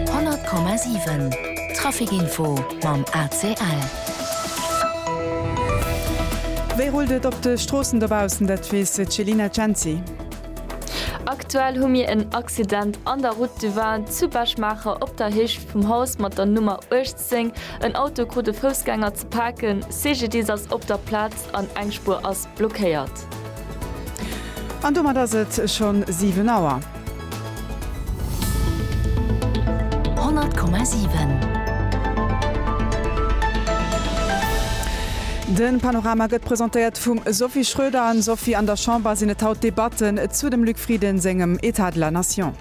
100,7 Trafic Info mam ACL. Wéi rullt et op de Stroossen dobaussen? Dat weess d'Jelina Cenci. Aktuell hu mir en Accident an der Route du Vin zu Bech-Maacher op der Héicht vum Haus mat der Nummer 18. En Auto krut e Foussgänger Paken, CGDIS ass op der Plaz an eng Spuer ass blockéiert. An domat ass et schonn 7 Auer. 100,7. De Panorama gëtt presentéiert vum Sophie Schröder. Sophie, an der Chamber sinn et haut Debatten zu dem Luc Frieden sengem État de la Nation.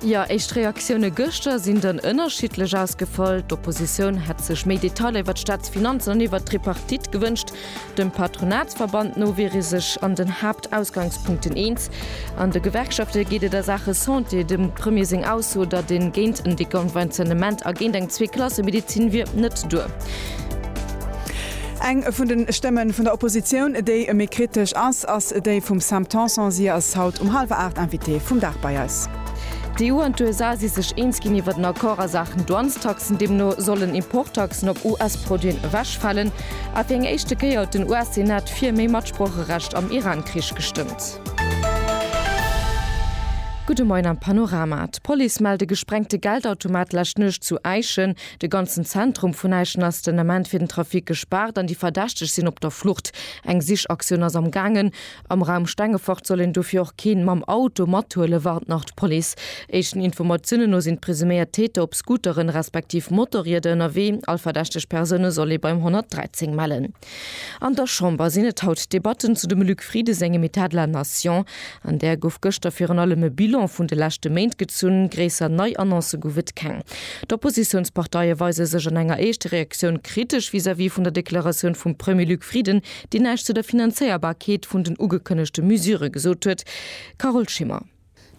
Jo, éischt Reaktioune gëschter sinn dann ënnerschiddlech ausgefall. D'Oppositioun hätt sech méi Detailer iwwer d'Staatsfinanzen an iwwer d'Tripartite gewënscht. Dem Patronatsverband no wier ee sech an den Haaptausgangspunkten eens. An de Gewerkschafte geet et a Saache Santé dem Premier seng Ausso, datt een géint en Deconventionnement a géint eng Zweeklassemedezin wier, net duer. Eng vun de Stëmmen vun der Oppositioun, déi méi kritesch ass, ass déi vum Sam Tanson. Si ass haut um hallwer 8 Invitée vum Dag bei eis. D'EU an d'USA si sech eens ginn iwwert en Accord a Saachen Douanestaxen. Deemno sollen Importtaxen op US-Produiten ewechfalen. A fir eng éischte Kéier huet den US-Senat fir méi Matsproocherecht am Iran-Krich gestëmmt. Gudde Moien am Panorama. D'Police mellt e gesprengte Geldautomat d'lescht Nuecht zu Äischen. De ganzen Zentrum vun Äischen ass den Ament fir den Trafic gespaart an déi Verdächteg sinn op der Flucht. Eng Sichaktioun ass am Gaangen. Am Raum Stengefort soll een dofir och keen mam Auto mathuelen, warnt nach d'Police. Éischten Informatiounen no sinn d'presuméiert Täter op Scooteren, respektiv Motorrieder ënnerwee. All verdächteg Persoune soll ee beim 113 mellen. An der Chamber sinn et haut d'Debatten zu dem Luc Frieden sengem État de la nation. An där gouf gëschter virun allem e Bilan vun de leschte Méint gezunn, gréisser nei Annoncë gouf et keng. D'Oppositiounsparteie weise sech an enger éischte Reaktioun kritesch vis-à-vis vun der Deklaratioun vum Premier Luc Frieden, deen näischt zu der Finanzéierbarkeet vun den ugekënnegte Mesure gesot huet. Carole Schimmer.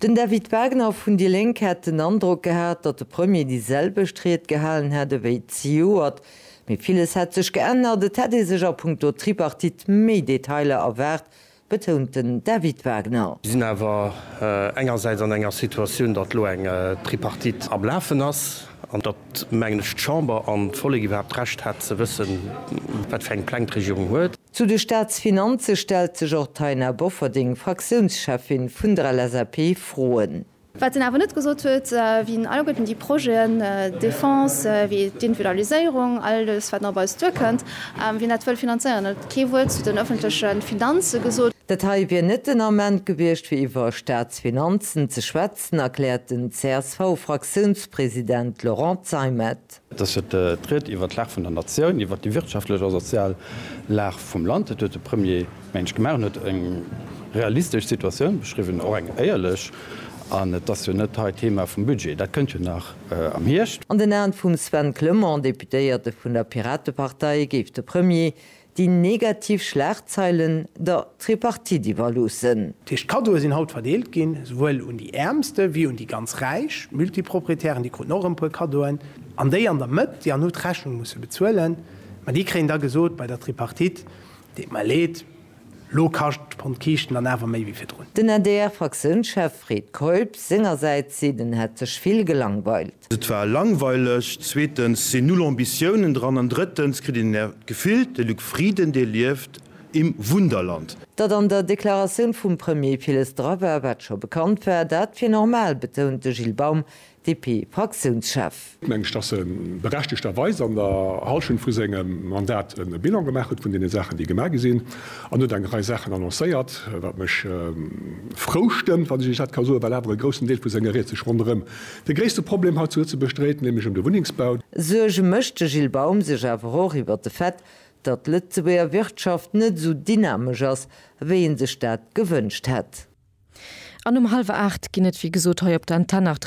Den David Wagner vun déi Lénk hätt den Androck gehat, datt de Premier déi selwecht Ried gehalen hätt ewéi zejoert. Mee villes hätt sech geännert, et hätt ee sech a punkto Tripartite méi Detailer erwaart, betount den David Wagner. Mir sinn awer engersäits an enger Situatioun, datt elo eng Tripartite am Lafen ass an datt, mengen ech, d'Chamber an d'Vollek iwwerhaapt d'Recht hätt ze wëssen, wat fir eng Pläng d'Regierung huet. Zu de Staatsfinanze stellt sech och d'Taina Bofferding, Fraktiounscheffin vun der LSAP, Froen. Wat en awer net gesot huet, wien alleguerten déi Projeten, Defense wéi d'Individualiséierung, alles wat nach op eis duerkënnt, wien dat wëll finanzéieren. En huet kee Wuert zu den ëffentleche Finanze gesot. Dat hei wier net den Ament gewiescht fir iwwer Staatsfinanzen ze schwätzen, erkläert den CSV-Fraktiounspresident Laurent Zeimet. Et ass jo d'Ried iwwert d'Lag vun der Natioun, iwwert déi wirtschaftlech a sozial Lag vum Land. Dat huet de Premier mensch gemaach. En huet eng realistesch Situatioun beschriwwen, och eng éierlech. An et ass jo net hei d'Thema vum Budget, dat kënnt jo nach am Hierscht. An den Aen vum Sven Clement, Deputéierte vun der Piratepartei, géif de Premier déi negativ Schlagzeilen der Tripartite iwwerloossen. Dat heescht, d'Kaddoe sinn haut verdeelt ginn, souwuel un déi Äermste wéi un déi ganz Räich. D'Multiproprietären, déi kruten och erëm e puer Kaddoen. An déi an der Mëtt, déi han hu d'Rechnung musse bezuelen. Mä déi kréien da gesot bei der Tripartite, deet mer leed, elo kascht d'Pond Kiischten dann awer méi wéi virdrun. Den adr-Fraktiounschef Fred Keup sengersäits seet, en hätt sech vill gelangweilt. Welt. Et war langweileg, zweetens sinn null Ambitiounen dran an drëttens kritt een d'Gefill, de Luc Frieden, dee lieft im Wunderland. Datt an der Deklaratioun vum Premier villes dra war, wat scho bekannt war, dat wier normal, betount de Gilles Baum, DP-Fraktiounschef. Et mengt ech, datt e berechtegterweis an der Hallschent vu sengem Mandat e Bilan gemaach huet vun deene Saachen, déi gemaach gi sinn, an huet eng Rei Saachen annoncéiert, wat mech frou stëmmt, wann ech dat ka soen, well awer e groussen Deel vu senger Ried sech ronderëm De gréisste Problem haut zu Lëtzebuerg dréit nämlech ëm de Wunnengsbau. Suerge mécht de Gilles Baum sech awer och iwwer de Fait, datt d'Lëtzebuerger Wirtschaft net esou dynamesch ass, wéi ee sech dat gewënscht hätt. An um hallwer 8 ginn et wéi gesot hei op der Antenne nach d'Reaktioune vun de Membere vun der Regierung.